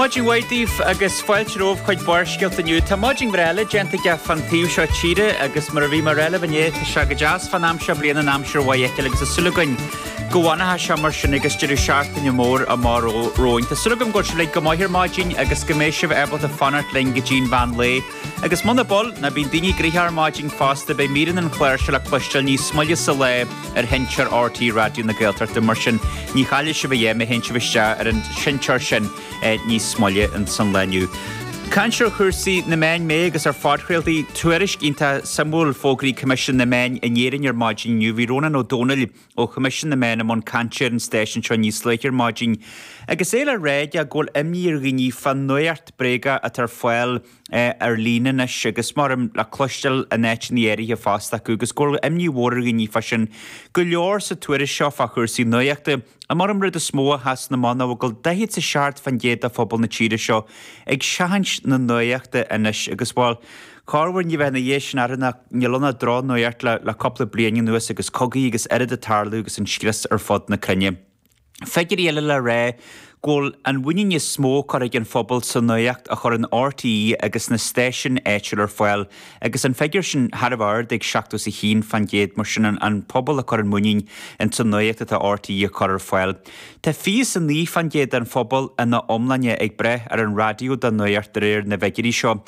Maidin mhaith daoibh agus fáilte romhaibh chuig Barrscéalta inniu. Tá maidin bhreá eile déanta againn fán taobh seo tíre agus mar a bhí mé a rá libh inné tá sé go deas fán am seo a bhliain an aimsir mhaith a fheiceáil agus súil againn go bhfanfaidh sé mar sin agus deireadh seachtaine mór amach romhainn Tá súil agam go bhfuil sibh uilig go maith ar maidin agus go mbeidh sibh ábalta fanacht linn go dtí an mheán lae Agus muna mbíonn, bhuel, ná bíonn daoine gnoitheach ar maidin fosta beidh míreanna an chláir seo le cloisteáil níos moille sa lae ar sheinnteoir RTÉ Raidió na Gaeltachta mar sin ní chaillfidh sibh a dhath má théann sibh isteach ar an seinnteoir sin níos moille in san lá inniu. Caint ar chúrsaí na meán, mé agus ar phodchraoltaí, tuairisc iontach suimiúil fógartha ag Coimisiún na Meán in Éirinn ar maidin inniu bhí Rónán Ó Domhnaill, Ó Choimisiún na Meán i mbun cainte ar an stáisiún seo níos luaithe ar maidin agus é le rá aige go bhfuil imní ar dhaoine fán nuaíocht bhréagach atá ar fáil ar líne anois agus muran le cloisteáil in áiteanna áirithe fosta acu agus go bhfuil imní mhór ar dhaoine fá sin go leor sa tuairisc seo fá chúrsaí nuaíochta ach domh an rud is mó a sheasann amach ná go bhfuil 47% de phobal na tíre seo ag seachaint na nuaíochta anois agus bhuel Corruair ní bheifeá ina dhiaidh sin orthu nó níl ann ach drochnuaíocht le cúpla bliain anuas agus cogaí agus araile ag tarlú agus an scrios ar fud na cruinne. Figiúirí eile le rá go bhfuil an mhuinín is mó curtha ag an phobal sa nuaíocht a chuireann RTÉ agus sna stáisiúin áitiúla ar fáil agus an figiúr sin thar a bheith ard ag 71% mar sin an pobal ag cur a muinín ins an nuaíocht atá RTÉ a chur ar fáil. Tá 29% den phobal ina iomláine ag brath ar an raidió dá nuaíocht de réir na bhfigiúirí seo.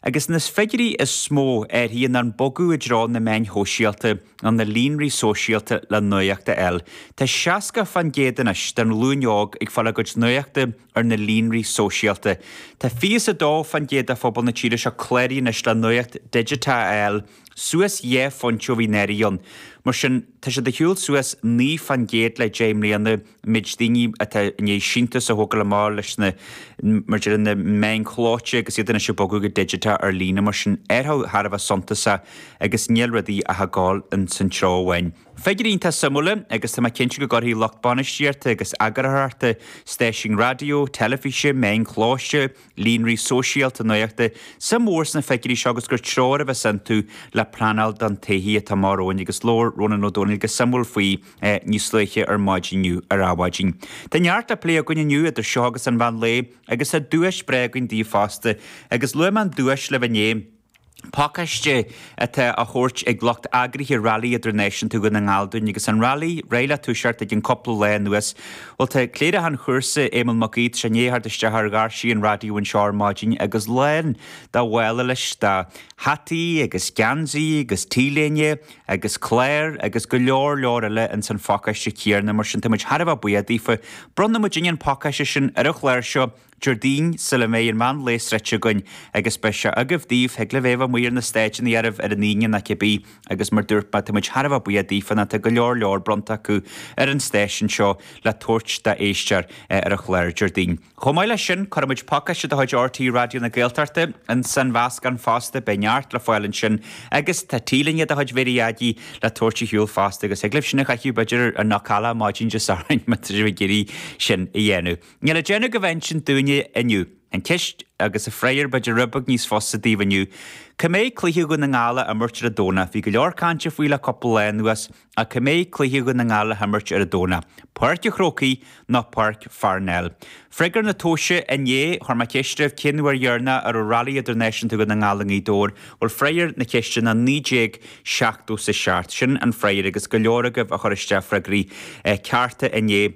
Agus na figiúirí is mó arís ná an bogadh i dtreo na meáin shóisialta nó na líonraí sóisialta le nuaíocht a fháil, tá seasca fán gcéad anois den ghlúin óg ag fáil a gcuid nuachta ar na líonraí sóisialta. Tá fiche is a dó fán gcéad de phobal na tíre seo cláraithe anois le nuaíocht dhigiteach a fháil, suas dhá phointe ó bhí anuraidh ann. Mar sin, tá sé i ndiaidh a ghabháil suas naoi fán gcéad le deich mbliana. méid daoine atá i ndiaidh síntiús a thógáil amach leis na mar a déarfá na meáin chlóite agus iad anois ag bogadh go digiteach ar líne. Mar sin, athrú thar a bheith suntasach agus níl rudaí ach a ghabháil in san treo amháin. Figiúirí iontach suimiúla agus tá mé cinnte go gcuirfidh lucht bainistíochta agus eagarthóireachta stáisiúin raidió, teilifíse, meáin chlóite, líonraí sóisialta nuachta suim mhór sna figiúirí seo agus gur treoir a bheas iontu le pleanáil don todhchaí atá amach romhainn agus labhair Rónán Ó Domhnaill go suimiúil faoi níos luaithe ar maidin inniu ar Adhmhaidin. Tá neart le plé againn inniu idir seo agus an mheán lae agus tá duais bhreá againn daoibh fosta agus luaigh mé an duais libh inné, pacáiste atá tugtha ag lucht eagraithe Railí Idirnáisiúnta Dhún na nGall dúinn agus an railí réidh le toiseacht i gcionn cúpla lá anois. Bhuel, tá cléireach an chúrsa, Éamonn Mac Aoidh, i ndiaidh a theacht isteach ar dhoirse an raidió anseo ar maidin agus lán dá mhála leis de hataí agus geansaí agus t-léinte, agus cláir, agus go leor leor eile ins an phacáiste céarna, mar sin tá muid thar a bheith buíoch daofa. Bronnfaidh muidinne an pacáiste sin ar an chlár seo, Déardaoin, sula mbeidh an meán lae sroichte againn, agus beidh sé agaibh, daoibh, thig libh é a bheith amuigh ar na stáitseannaí oraibh, ar an Aoine, nó cibé, agus mar dúirt mé, tá muid thar a bheith buíoch daofa, ná tá go leor leor bronnta acu ar an stáisiún seo, le tabhairt d'éisteoir ar an chlár Déardaoin. Chomh maith leis sin, cuirfidh muid pacáiste de chuid RTÉ Raidió na Gaeltachta ins an mheascán fosta, beidh neart le fáil ansin agus tá T-léine de chuid Mary Aggie le tabhairt ar shiúl fosta agus thig libh sin a chaitheamh b'fhéidir ar Knockalla maidin Dé Sathairn má tá sibh ag iarraidh sin a dhéanamh. Níl le déanamh agaibh ach insint dúinne inniu. An cheist agus an freagar b'fhéidir rud beag níos fusa daoibh inniu, cá mbeidh cluiche Dhún na nGall á imirt ar an Domhnach? Bhí go leor cainte faoi le cúpla lá anuas, Ach cá mbeidh cluiche Dhún na nGall le himirt ar an Domhnach, Páirc a' Chrócaigh nó Páirc Pharnell? Freagra na tomhaise inné, chuir mé ceist oraibh cén uair dheireanach a raibh Railí Idirnáisiúnta Dhún na nGall i nGaoth Dobhair? Bhuel, freagar na ceiste ná 1977. Sin an freagar agus go leor agaibh a chuir isteach freagraí cearta inné,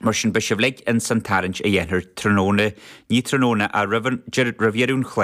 mar sin beidh sibh uilig ins an tarraingt a dhéanfar tráthnóna, ní tráthnóna ach roimh an, roimh dheireadh an chláir.